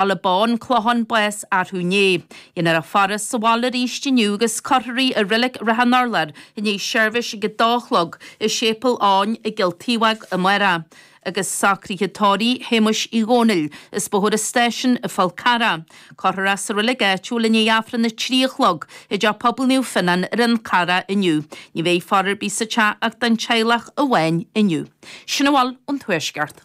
Ala bán clochán bás arú inné. Déanfar a faire sa bhaile arís inniu agus cuirfear í i Reilig Shrath an Urláir i ndiaidh seirbhís ag a dó a chlog i Séipéal Eoin i gCill Taobhóg amárach. Agus socruithe tórraimh Shéamuis Uí Dhónaill as Bóthar an Stáisiúin, an Fál Carrach. Cuirfear é sa reilig áitiúil i ndiaidh Aifreann a trí a chlog i dTeach Pobail Naomh Fionán ar an Fhál Carrach inniu. Ní bheidh faire ar bith sa teach ach don teaghlach amháin inniu. Sin a bhfuil ón Tuaisceart.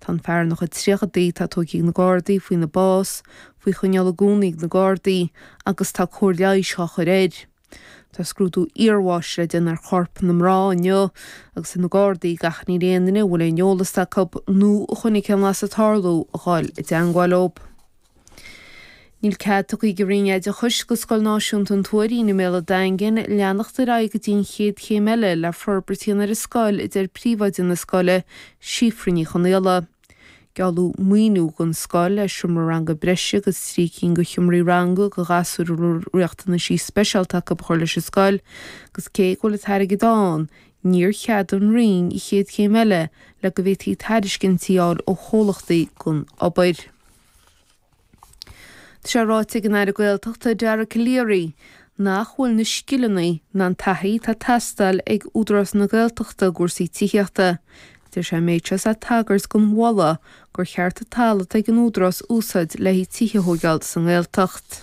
Tá an fear ina chuid tríochaidí, atá tóigthe ag na Gardaí faoina bás, faoi choinneáil i gcónaí ag na Gardaí, agus tá cóir leighis á chur air. Tá scrúdú iarbháis le déanamh ar chorp na mná inniu, agus tá na Gardaí ag achainí ar aon duine a bhfuil aon eolas acu nó a chonaic aon bhlas ag tarlú a dhul i dteangmháil. Níl cead tugtha ag an Roinn Oideachais do Scoil Náisiúnta an Tuairín i mBéal an Daingin leanacht ar aghaidh go dtí an chéad chéim eile le forbairt a dhéanamh ar an scoil a deir príomhoide na scoile, Síofra Ní Chonaola. Gealladh maoiniú don scoil le seomra ranga breise agus trí cinn de sheomraí ranga do ghasúir a raibh riachtanaisí speisialta acu a chur leis an scoil agus cé go bhfuil an t-airgead ann níor cheadaigh an Roinn an chéad chéim eile le go bhféadfaí tairiscintí a fháil ó chomhlachtaí don obair. Tá sé ráite ag an Aire Gaeltachta Dara Calleary nach bhfuil na scileanna ná an taithí atá ag teastáil ag Údarás na Gaeltachta i gcúrsaí tithíochta. Deir sé an méid seo is é ag tagairt don mholadh gur cheart an talamh atá ag an Údarás a úsáid le tithe a thógáil sa nGaeltacht.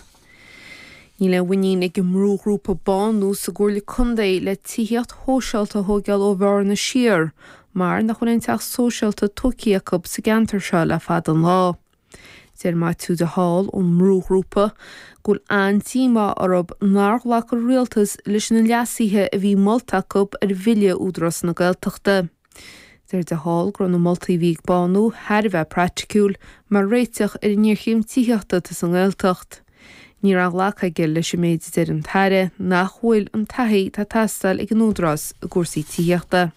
Níl aon mhuinín ag an mbrúghrúpa Bánú sa gComhairle Contae le tithíocht shóisialta a thóigeáil ó Bhearna siar mar nach bhfuil aon teach sóisialta tógtha acu sa gceantar seo le fada an lá. Deir Maitiú de Hál ón mbrúghrúpa go bhfuil an-díomá orthu nár ghlac an rialtas leis na leasuithe a bhí molta acu ar Bhille Údarás na Gaeltachta. Deir de Hál go raibh na moltaí a bhí ag Bánú thar a bheith praiticiúil mar réiteach ar an ngéarchéim tithíochta atá sa nGaeltacht. Ní raibh aon ghlacadh aige leis an méid a deir an tAire nach bhfuil an taithí atá ag teastáil ag an Údarás i gcúrsaí tithíochta.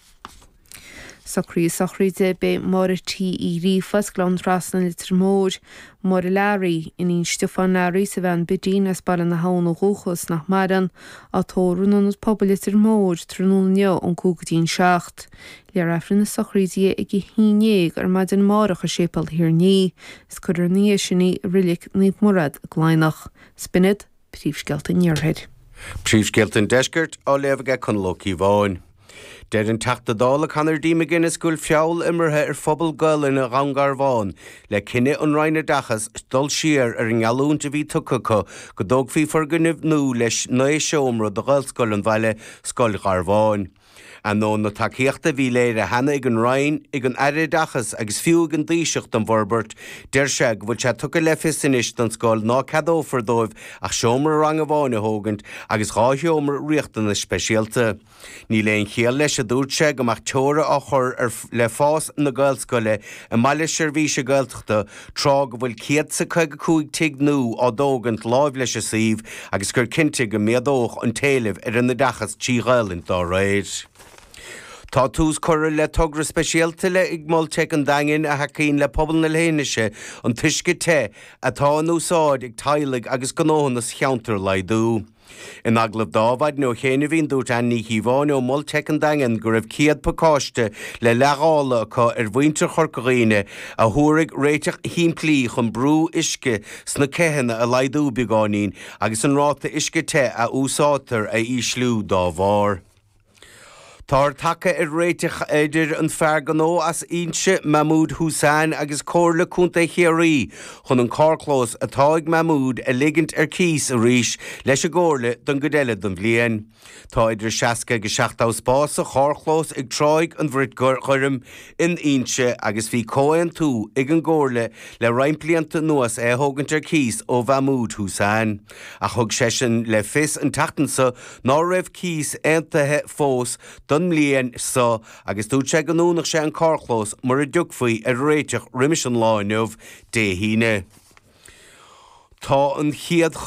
Socruithe sochraide. Beidh Máire T. Uí Ghríofa as Gleann Trasna, Leitir Móir, Máire Learaí, iníon Stiofán Learaí, is a bhean Bidín as Baile na hAbhann ó dhúchas, nach maireann, Á tórramh in ionad pobail Leitir Móir tráthnóna inniu ón cúig go dtí an seacht. Léifear Aifreann na sochraide ag a haon ndéag ar maidin amárach i Séipéal Thír an Fhia, is cuirfear ina dhiaidh sin í i Reilig Naomh Muire i gCladhnach. Sin iad príomhscéalta an Iarthair. Príomhscéalta an Deiscirt, á léamh aige Conall Ó Cíobháin. Deir an Teachta Dála Conor D McGuinness go bhfuil feall imeartha ar phobal Gaolainne Dhún Garbhán le cinneadh an Roinn Oideachais dul siar ar an ngeallúint a bhí tugtha acu go dtógfaí foirgneamh nua le 9 seomra do Ghaelscoil an bhaile, Scoil Gharbháin. Ainneoin na tacaíochta a bhí léirithe cheana ag an Roinn, ag an Aire Oideachais agus fiú ag an dTaoiseach don bhforbairt, deir sé go bhfuil sé tugtha le fios anois don scoil ná ceadófar dóibh ach seomra ranga amháin a thógaint agus dhá sheomra riachtanas speisialta. Níl aon chiall leis, a dúirt sé, go mbeadh teora á chur le fás na Gaelscoile i mBaile Seirbhíse Gaeltachta tráth go bhfuil céad is caoga cúig tigh nú á dtógaint láimh leis an suíomh agus gur cinnte go méadódh an t-éileamh ar an oideachas trí Ghaelainn dá réir. Tá tús curtha le togra speisialta ag Mol Teic an Daingin a thacaíonn le pobal na leithinise an t-uisce te atá in úsáid ag teaghlaigh agus gnóthanna sa cheantar a laghdú. In agallamh do Mhaidhc Ó Cinnéide, dúirt Áine Ní Chíobháin ó Mol Teic an Daingin go raibh céad pacáiste le leithdháileadh acu ar mhuintir Chorca Dhuibhne a thabharfaidh réiteach shimplí chun brú uisce sna ceathanna a laghdú beagáinín agus an ráta uisce te a úsáidtear a ísliú dá bharr. Táthar tagtha ar réiteach idir an fear gnó as Inse, Mahmoud Hussain, agus Comhairle Contae Chiarraí chun an carrchlós atá ag Mahmoud a ligint ar cíos arís leis an gComhairle don gcuid eile den bhliain. Tá idir 60 agus 70 spás sa charrchlós ag Tráigh an Bhrait Ghoirm in Inse agus bhí comhaontú ag an gComhairle le roinnt blianta anuas é a thógaint ar cíos ó Mhahmoud Hussain. Ach thug seisean le fios an tseachtain seo ná raibh cíos aontaithe fós don mbliain seo agus dúirt sé go ndúnfadh sé an carrchlós mura dtiocfaí ar réiteach roimis an lá inniu, Dé hAoine. Tá an chéad.